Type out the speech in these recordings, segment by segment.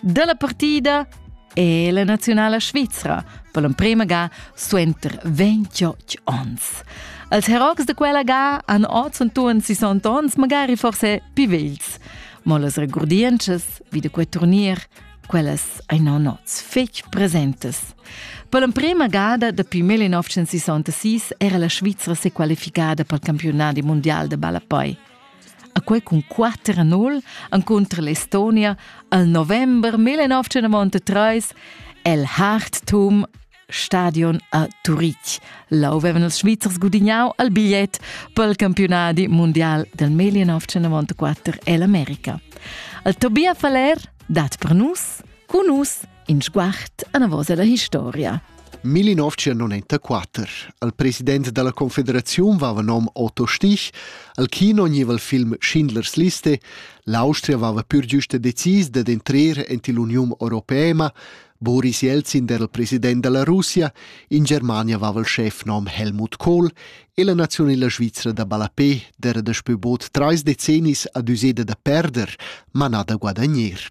dalla partida è la nazionala svizra per l'emprema ga suenter 28 onns. Als herocs de quella ga han oz entuorn 60 onns magari forse più vegls. Ma las regurdientschas vi de quei turnier, quellas ein non oz fetg presentes. Per l'emprema gada dapi 1966 era la Svizra sequalificada pel campionat mundial de ballapoi. e quei cun quater a nul encunter l'Estonia al november 1993 el Harttum Stadion a Turitg. Là avevano els Svizzers gudignau al bigliet per il campionadi mondial del 1994 e l'America. Al Tobias Faller dat per nus, cu nus, In sguard anavos alla historia. 1994. Al president dalla confederaziun vava nom Otto Stich, al kino gneva il film Schindlers Liste, l'Austria vava pur giuste decis dad entrer ent l'Uniun Europeema, Boris Jelzin era il president della Russia, in Germania vava il chefnom Helmut Kohl e la nazionela Svizzera da Balapé era daspö bod trais decennis ad useda da perder, ma nada guadagner.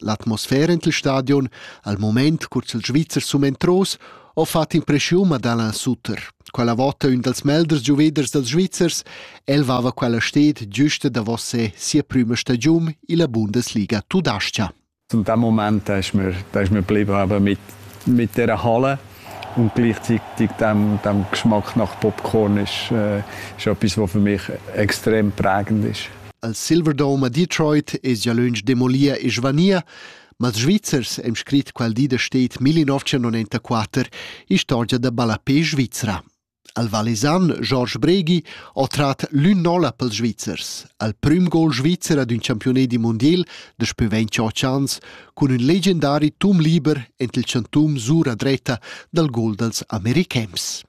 L'atmosfera en il stadion, al mument cur ch'il Svizzer sum entros, ho fat impreschiun ad Alain Sutter. Quella vota ün dals melders giuveders dals Svizzers, el vava quella sted giusta davos se sia prüma stagiun illa Bundesliga tudascha. Zum dem Moment da ich mir, da ich mir blieben aber mit, mit der Halle und gleichzeitig dem, dem Geschmack nach Popcorn ist, äh, ist etwas, was für mich extrem prägend ist. Al Silverdome a Detroit es gia lönch demolir e svanir, ma ils Svizzers hem scrit quel di da stet 1994 istorgia da ballapé svizra. Al Valesan Georges Bregi ha trat l'ün nolla pels Svizzers, al prüm gol svizzer ad ün campione di mondial da spö 28 ans cun ün legendari tum liber ent il chantum sura dretta dal gol dals americhems.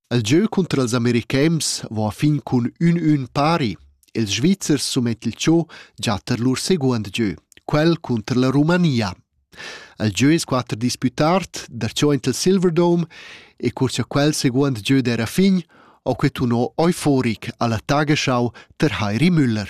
El gieu cunter ils americhems va a fin cun ün-ün pari. Ils Svizzers sumet il cho già tar lur seguond gieu, quel cunter la Romania. El gieu es quatter disputard, darcho int il Silverdome e cur cha quel seguond gieu d'era fin, ho que tuno euforic alla Tagesschau ter Heiri Müller.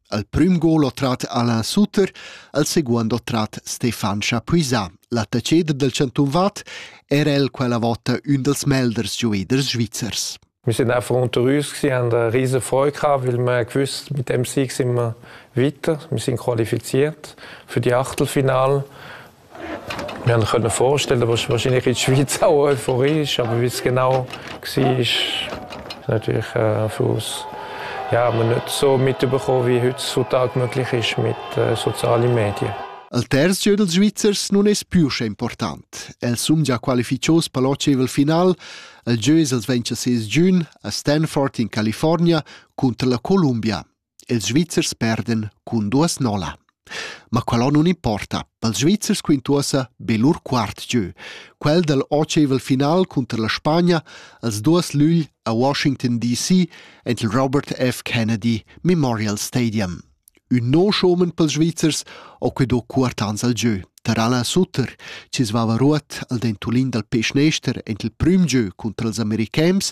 Al prüm gol ho trat Alain Sutter, al seguond ho trat Stefan Chapuisat. L'attacheder del chantun Vad era el quella vota ün dels melders gioveders svizzers. Wir sind einfach unter uns, sie haben eine riesige Freude gehabt, weil wir gewusst, mit dem Sieg sind wir weiter, wir sind qualifiziert für die Achtelfinale Wir haben können vorstellen, was wahrscheinlich in die Schweiz auch Euphorie ist, aber wie es genau war, ist natürlich äh, für uns ja, wir nicht so mitbekommen, wie heutzutage möglich ist mit äh, sozialen Medien. Al terzo dels Svizzers non es più important. El sum già qualificios per l'oceval final. El jeu els ventscha ses giun a Stanford in California contra la Columbia. ils Svizzers perdan cun duas nolla. Ma quello non importa, dals Svizzers quintuosa be lur quart gieu, quel dal oceval final cunter la Spagna als duas lügl a Washington DC ent il Robert F. Kennedy Memorial Stadium. Un no schomen pels Svizzers o que do quartans al gieu, Tarala Sutter, ci svava ruot al dentulin dal peschnester ent il prüm gieu cunter els americans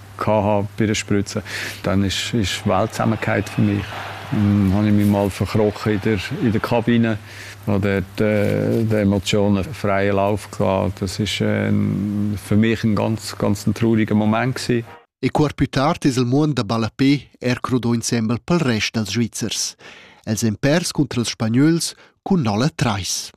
gehabt bei der Spritze, dann ist, ist Weltsamkeit für mich. Dann habe ich mich mal verkrochen in der, in der Kabine, wo dort äh, die Emotionen freien Lauf hatten. Das war äh, für mich ein ganz, ganz ein trauriger Moment. Gewesen. E cuor più tard es il muond da ballapé er crudò insembel pel rest dals Svizzers. Els èn pers cunter els Spagnols cun nolla trais.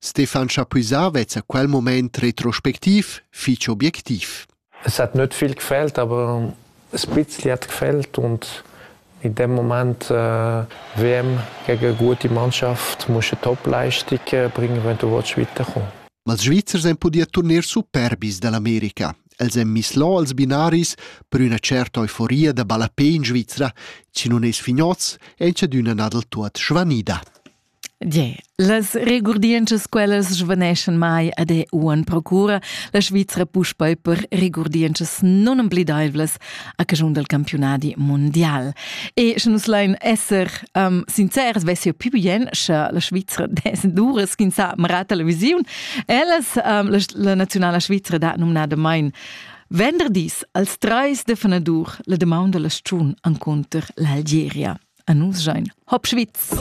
Stefan Chapuisat vezza quel moment retrospectiv fich objectiv. Es hat nicht viel gefällt, aber ein bisschen hat gefällt und in dem Moment äh, WM gegen eine gute Mannschaft musst du Top-Leistung bringen, wenn du willst weiterkommen Ma els Svizzers han pudì turnier superbis dall'America. Els han mislò als binaris per üna certa euforia da ballapé in Svizra, chi nun es fignoz e c'adüna nadel tuot svanida. Yeah. Las regurdientschas quellas svaneschan mai ad e uan procura la Svizra puspei per regurdientschas non empledeivlas a caschun del campiunadi mondial. E sche nus lein esser um, sincers, vess jeu più bien, sche la Svizra des duras kin sa mara televisiun. Ellas um, la, la nazionala Svizra da nomnada mein venderdis als treis de fenadur la demaun della stun anconter l'Algeria. A nus sein. Hop Schwitz!